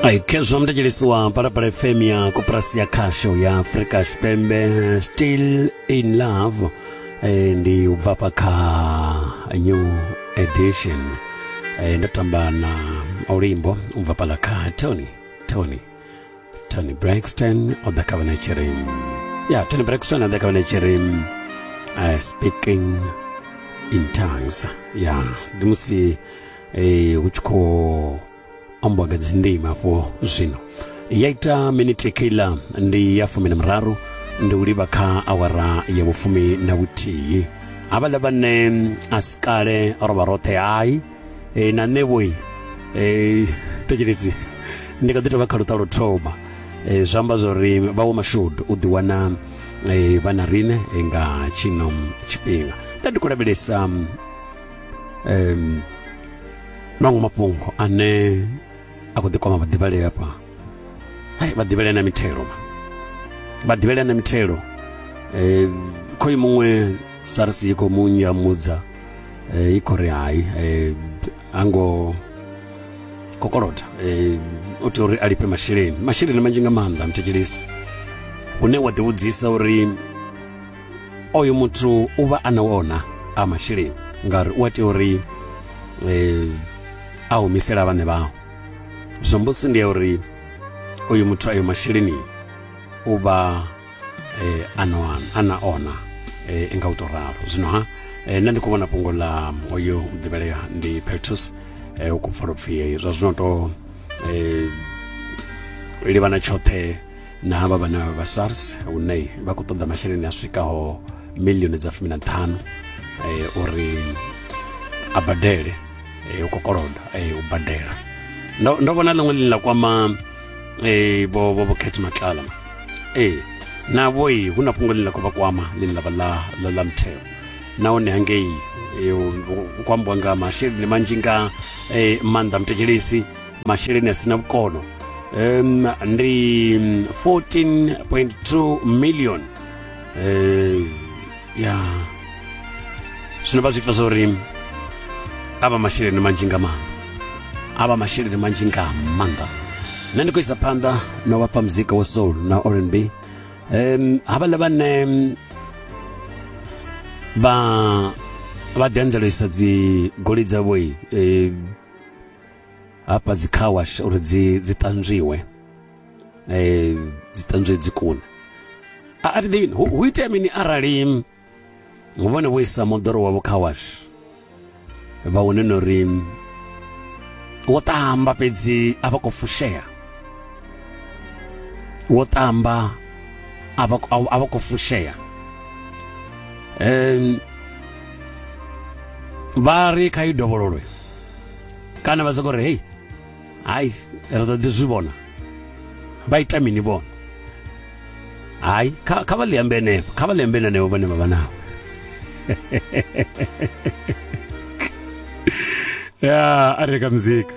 aikezwa mtachiliswa parapara fm ya koperasi ya khasho ya africa chipembe still in love eh, ndi ubva pa kha new edition eh, ndatamba na ulimbo ubva pala kha tony tony tony braxton o ḓa kha vhana tshiri ya tony braxton a ḓa kha vhana tshiri uh, speaking in tongues ya ndi musi eh, hu tshi khou ambiwa nga dzindima afho zwino ya ita miniti kila ndi ya fumi na muraru ndi u livha kha awara ya vhufumi na vhuthihi havhaḽa vhane a si kale ro vha roṱhe hai e, na nṋe vhoi e, eh, thetshelesi ndi kha ḓi tovha kha luṱa luthoma e, eh, zwi amba zwori vhawo mashudu u ḓiwana e, vha na riṋe nga tshino tshifhinga nda ndi khou lavhelesa um, maṅwe mafhungo ane a khou ḓikwama vhaḓivhalei afha hai vhaḓivhalei na mithelo vhaḓivhalei na mithelo um khoyu muṅwe sars i khou mu nyamudza i khou ri hai ha ngo kokolota o tea uri a lifhe masheleni masheleni manzhi nga maanḓa muthetshelesi hune wa ḓivhudzisa uri oyo muthu u vha a na wona a masheleni ngauri u a tea uri a humisela vhaṋe vhao zwombosi ndi ya uri uyu muthu ayo masheleni u vha eh, anoan ana ona eh, nga u to ralo zwino ha eh, nṋe ndi khou vhona fhungo ḽa oyo ḓivhelea ndi peltus eh, u khou pfala upfhi eh, zwa zwino to eh, livhana tshoṱhe na havha vhana vha sars hune vha khou ṱoḓa masheleni a swikaho milioni dza fumi na ṱhanu eh, uri a badele eh, u kokoloda eh, u badela ndo ndo vhona ḽiṅwe ḽine ḽa kwama eh bo bo bo khetha matlala eh na boyi huna fhungo ḽine ḽa khou vha kwama ḽine ḽa vha ḽa ḽa ḽa mutheo nahone hangei hu khou ambiwa nga masheleni manzhi nga maanḓa muthetshelesi masheleni a si na vhukono um, ndi 14.2 million um, ya zwino vha zwi pfa zwa uri a vha masheleni manzhi nga maanḓa a vha masheleni manzhi nga maanḓa nṋe ndi khou isa phanḓa na vhapha muzika wa soul na rnb um havhaḽa vhane vha vha ḓianzelisa dzi goli dzavho um hafha dzi car wash uri dzi dzi ṱanzwiwe eh dzi ṱanzwe dzi kuna a a ḓivhi hu itea mini arali vhone vho isa moḓoro wavho kha wash vha wane no ri wo tamba fhedzi a vha khou fushea wo tamba a vha a vha khou fushea um vha ri kha i dovhololwe kana vha soko ri hei hayi ri ḓo ḓi zwi vhona vha ita mini vhona hayi kha vha ḽi ambe henefho kha vha ḽi ambe henefho vhane vha vha navho ya a reka muzika